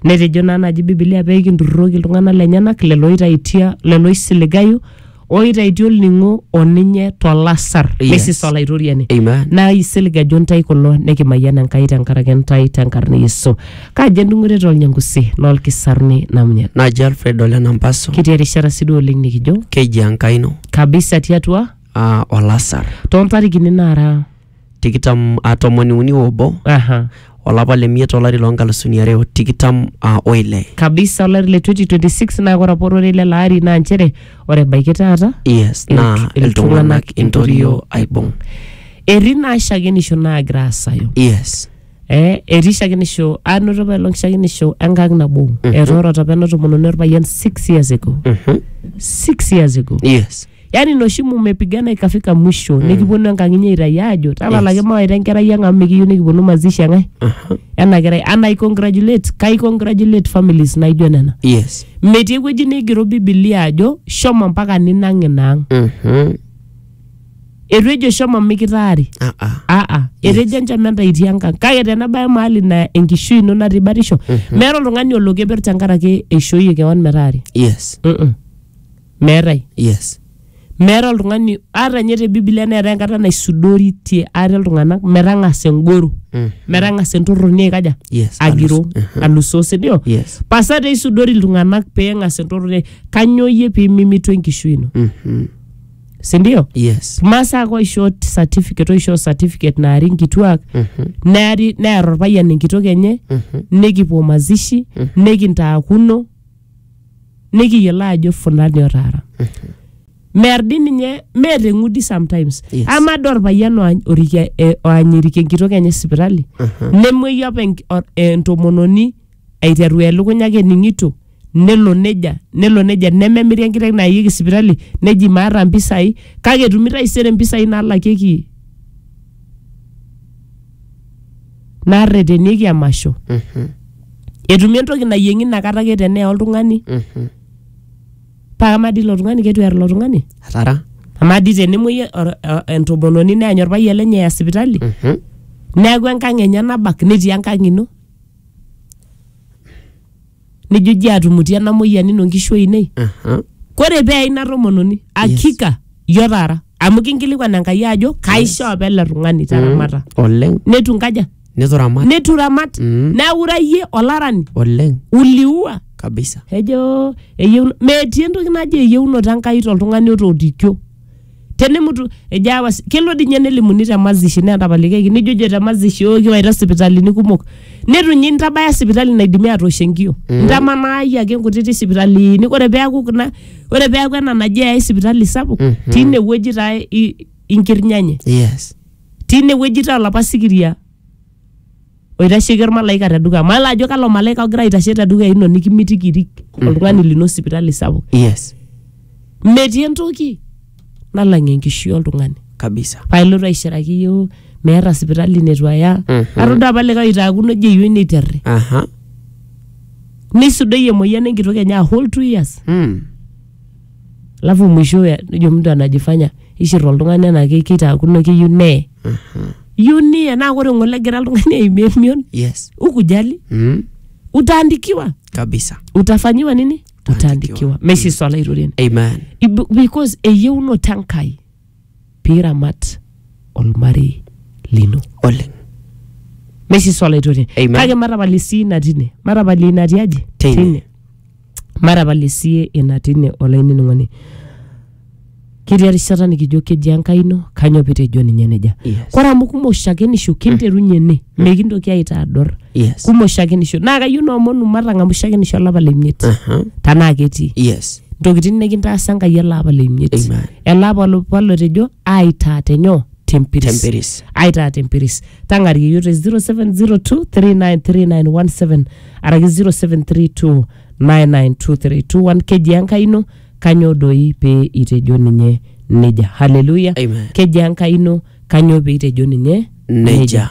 Netejo naa naaji Biblia pee kinturrurroki iltung'anak lenyenak lelo oitaitia lelo oisiligayu oitaitia olning'o o ninye tolasar Yes. lesis olaitoriani Amen. naa isiligajo ntae kulo nikimayian Enkai tenkaraki ntae tenkarna e Yesu. Kaji endung'oret olnyangusi lolkisaruni namunyan. Naji Alfred Ole Nampaso, Kitii erishata sidai oleng nikijo keji Enkai ino kabisa tiatua aa olasar. toontarikini naara tikitam ah, tomoni uni obo Aha. olapa le miet olari loo nkalusuni are o tikitam ah, oile kabisa olari le 2026 naa ore apa ororei lele ari naa nchere ore ebaiki taata yes Iltu- naa iltung'anak iltung'anak intorio intorio aibung etii naa shakenisho naagira asayu yes eh, etii shakenisho anoto apa elong shakenisho enkang nabo etoorote apa ena tomononi orpayian 6 years ago Mhm. 6 years ago yes yani noshi mumepigana ikafika mwisho mm. nikiponu enkang inyi aitai aajo talalaki yes. mawaita enkerai ang amu mikiyieu nikiponu mazishi enkae Aha. ena kerai and i congratulate kai congratulate families naijo nena yes metii ewueji neigero bibilia ajo shomo mpaka ninang ina ang Mhm. etu ejo shomo mikitaari Ah, ah. aa etejo enchama enta itii enkang kake tenabaya mahali na enkishui ino natii batisho meeta oltung'ani olo keper tenkaraki eishoyie kewan metaari yes Mm-mm. meetae yes meeta oltung'ani ata ninye te bibilia neetae enkata naisudoritie ate iltung'anak metang'asa engoro Mm. metang'asa entorroni aikaja Yes, agiro alus- Mhm. alusoo sindio Yes. pasa te isudori iltung'anak peeng'as entorroni kanyoo iyie piimimitu enkishui ino Mhm. sindio yes masaa ake oishoo certificate oishoo certificate naari nkituak Mhm. neari near orpayian enkitok enye Mhm. nikipuo mazishi nikintaakuno nikiyiolo ajo fulani otaara mear di ninye meeta eng'udi sometimes Yes. ama doi orpayian oany- orikia- eh, oanyiriki enkitok enye sipitali nemueyu apa enk- or- eh, entomononi aiteru elukunya ake ening'ito nelo neja nelo neja nememiri enkiteng nayieki sipitali neji maata mpisai kake etumi taisere mpisai naalakieki narretenieki emasho Mhm. etumi entoki nayieng'i inakata ake tenee oltung'ani Mhm. paa kamaa dii ilo tung'ani ketu ear ilo tung'ani atara amaa dii tenemuoi or- o- entomononi neany orpayian lenye eya sipitali Mhm. neeku enkang enye nabak netii enkang ino nijo iji atumuti ena moyian ino nkishu ainei Aha. kore pee ina tomononi akika yo taara amu kinkilikuan enkai ajo kaisho apa ele tung'ani taramata oleng netu nkaja netu ramat netu ramat Mm. neaku ira iyie olarani oleng uliua kabisa ejo eyieu metii entoki naji eyieunoto enkai toltung'ani otoodikio tenemutu ejo aawa si- kelo dii ninye nelimuni te mazishi naa etapalikiaki nijojo te mazishi oo kiwaita sipitalini kumok netu ninye intabaya sipitali naidimi atoosh enkio intamanayie ake nkutiti sipitalini ore peeku kuna ore peeku ena naji eyai sipitali sapuk Mhm. tine wueji taa i- inkirnyanye yes tine wueji taa olapa sikiria oitasheki olmalaika te dukuya mayiolo ajo kalo malaika ogira aitashe te dukuya ino nikimitiki irik oltung'ani lino sipitali sapuk yes metii entoki nalang enkishui oltung'ani kabisa pailotu aishiraki yioo meeta sipitali netu aya Mhm. atodua apa likae oitaakuno ejo eyieu neiterri aha neisudoi emoyian enkitok enye a whole two years mm. alafu mwisho ya- nejo mtu anajifanya ishir oltung'ani anaa ke- keitaakuno keyieu neye iyieu niye naa ore ng'ole egira oltung'ani aimie emion yes ukujali mm. utaandikiwa kabisa utafanyiwa nini Utaandikiwa. utaandikiwa meshiswala airorie amen Ibu- because eyieunoto enkai piramat olmarei lino oleng meshiso olaitoriani Amen. kake matapalie sii ina tine matapalie ina tiaji Tine. matapalie sie ina tine olainining'oni ketii erishata nikijo keji enkai ino kanyoo pitejo ninye nejia Yes. kore amu kumok shakenisho kinterunye ene mekintoki aitador yes kumok shakenisho naa kayieu naomonu matang'amu shakenisho olapa lemiet Aha. tanaa ketii yes ntokitin nikintaasa Enkai ele apa le imiet. Amen. Ele apa lo- apa lotejo aitaa tenyoo tempiris. Tempiris. Aitaa tempiris. Tang'arie iyiok te 0702393917 araki 0732992321 keji Enkai ino kanyoo doi pee itejo ninye neja. Haleluya. Amen. Keji Enkai ino kanyoo pee itejo ninye Neja.